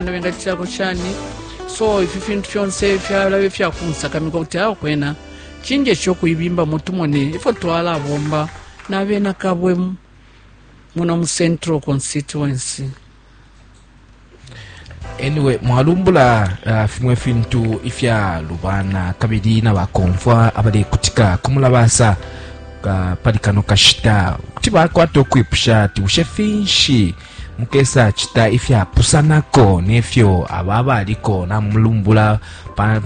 na bengacitilako shani so ifi fintu fyonse fyalaba ifyakunsakamika kuti awo kwena cinjesha ukuibimbamo tumone ifyo twalabomba na bena kabwe muno mu central constituency anyway mwalumbula uh, fimwe fintu ifyalubana kabili na bakomfwa abalekutika kumulabasa uh, pali kano kashita kuti bakwata ukwipusha ati bushe finshi Mukesacita ifyapusanako ne fyo aba abaliko namulumbula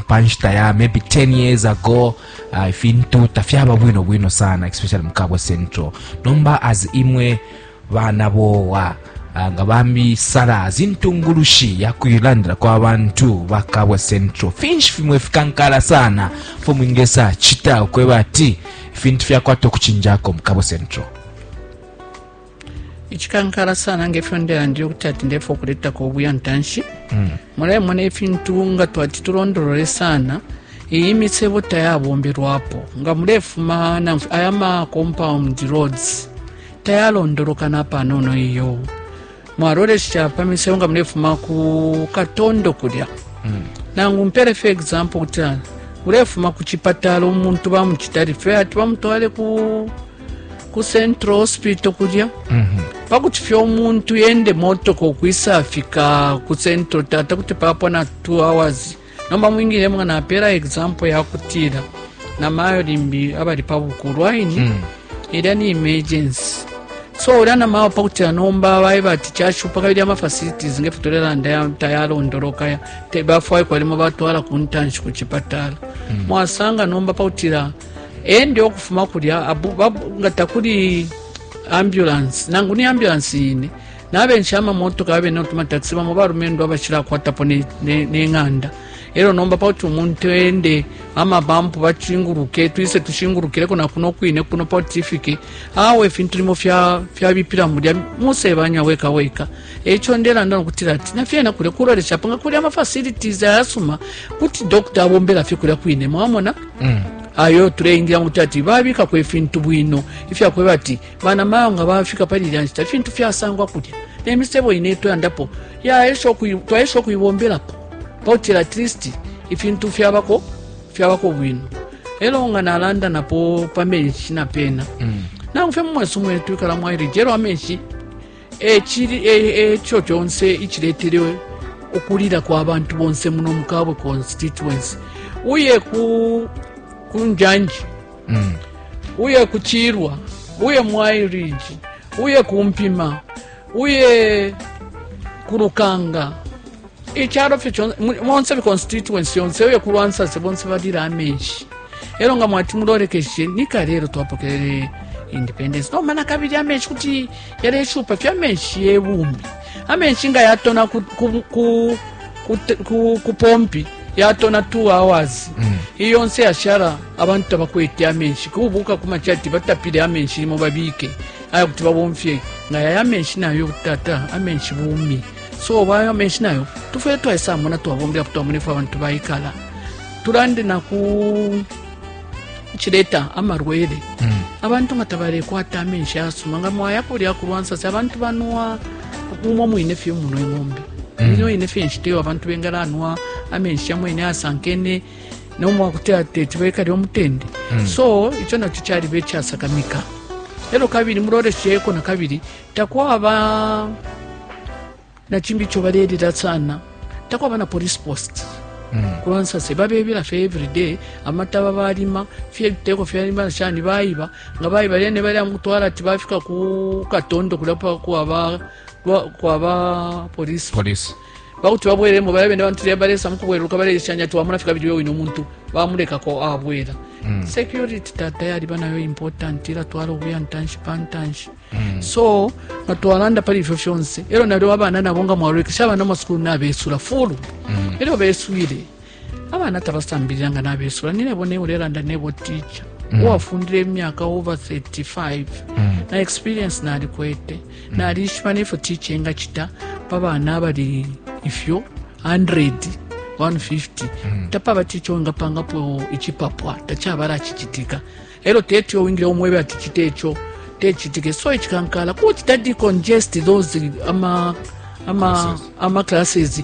pa nshita ya maybe 10 years ago uh, ifintu tafyaba bwino bwino sana especially mu Kabwe Central nomba as imwe bana bowa uh, nga bambi sala zintungulushi yakuilandila kwa bantu ba Kabwe Central finshi fimwe fikankala sana fo mwingesa chita ukweba ati ifintu fyakwata okuchinjako mu Kabwe Central icikankala sana ngefyo ndelandile ukuti ati ndefo kuletako ubuya ntanshi mm. mulemona ifintu nga twati tulondolole sana iyi misebo tayabombelwapo nga mulefuma aya ma compound roads tayalondoloka napanono iyo mwalolesha pa misebo nga mulefuma ku katondo kulya mm. nangu mpere fe example kuti ulefuma ku chipatala umuntu bamuchita rife ati bamutwale ku ku central hospital kulya mhm. pakuti fye omuntu yende motoka ukwisafika ku central tata kuti papwa na two hours nomba mwingile mwana apera example yakutila na mayo limbi abali pa bukulu aini mm. ilya ni emergency so ulya na mayo pakuti anomba baye bati kyashupa kabili ama facilities ngefe tulelanda tayalondolokaya tebafwaye kwalimo batwala ku ntanshi ku chipatala mm. mwasanga nomba pakutila ende ukufuma kulya nga takuli ambulance nangu ni ambulance yine nabensha amamotoka abe notumataxi bamo balumendo abashilakwatapo neng'anda elo nomba pauti umuntu ende amabampu bachinguluke twise tushingulukileko nakuno kwine kuno pauti ifike awe ifintu limo fyabipila fya mulya musebanya weka weka echo ndelanda nokutila ati nafyena kulya kuloleshapo nga kuli amafacilities ayasuma kuti dokta abombela fye kulya kwine mwamona mm. ayo tuleingira ngu tati babikako ifintu bwino ifyakweba ati bana mayo nga bafika pali ilya nshita ifintu fyasangwa kulya nemisebo ine twayandapo twaesha okuibomberapo pautira at least ifintu fyabako fyabako bwino elo nga nalanda napo pamenshi napena mm. nangu fye mumwesu mwetwikala mwairije elo amenshi e cili e, e co conse iciletele ukulila kwa bantu bonse muno mukabwe constituency uye ku kunjanji mm. uye kuchirwa uye mwairiji uye kumpima uye kurukanga icharo fye chonse monse constituency yonse uye kurwansase bonse valira amenshi ero nga mwati murorekeshe nikarero twapokerere independence nomana kabiri amenshi kuti yali ishupa fya menshi ye bumbi amenshi nga yatona ku, ku, ku, ku, ku, ku pompi yatona 2 hours mm. iyo nse yashara abantu tabakwete amenshi kubuka kumacha ati batapile amenshi limo babike aya kuti babomfye nga yaya amenshi nayo tata amenshi bumi so bayo amenshi nayo tufere twaisamona twabombera kuti twamonefe abantu baikala tulande naku chileta amarwele mm. abantu nga tabalekwata amenshi asuma nga mwayapo lya kulwansasi abantu banwa umwo mwine fye muno ing'ombe mm. nino ine fye nshita iyo abantu bengalanwa amenshi yamwene asankene nomwakuti ateti bekali omutende mm. so icho nacho chaliba echasakamika elo kabili mulolesheko nakabili takwaba na cimbi ico balelila sana takwaba na police post mm. kubansase babebila fye everyday amataba balima fye ebiteko fyalima shani baiba nga baiba lene bali amutwala ati bafika ku katondo kulapa kwaba kwaba police police bakuti babweremo bala bene bantu lyabalesa mukubweruka baleshanya twamuna fika bili wewine omuntu bamulekako abwera mm. security tata yaliba nayo important ila twala obuya ntanshi pantanshi mm. so nga twalanda pali ifyo fyonse elyo nalyo abana nabo nga mwalolekesha abana masukulu nabesula fulu mm. elyo beswile abana tabasambilila nga nabesula ninebo nebo lelanda nebo ticha mm. uwafundile emyaka over 35 mm. na experience nalikwete mm. nalishiba nefyo ticha engacita pa bana abali ifyo 100 150 mm. tapaba ticha wengapangapo icipapwa tacabala cicitika e lyo teti owingile umwebe ati cite ico tecitike so icikankala kucita decongest those ama ama ama classes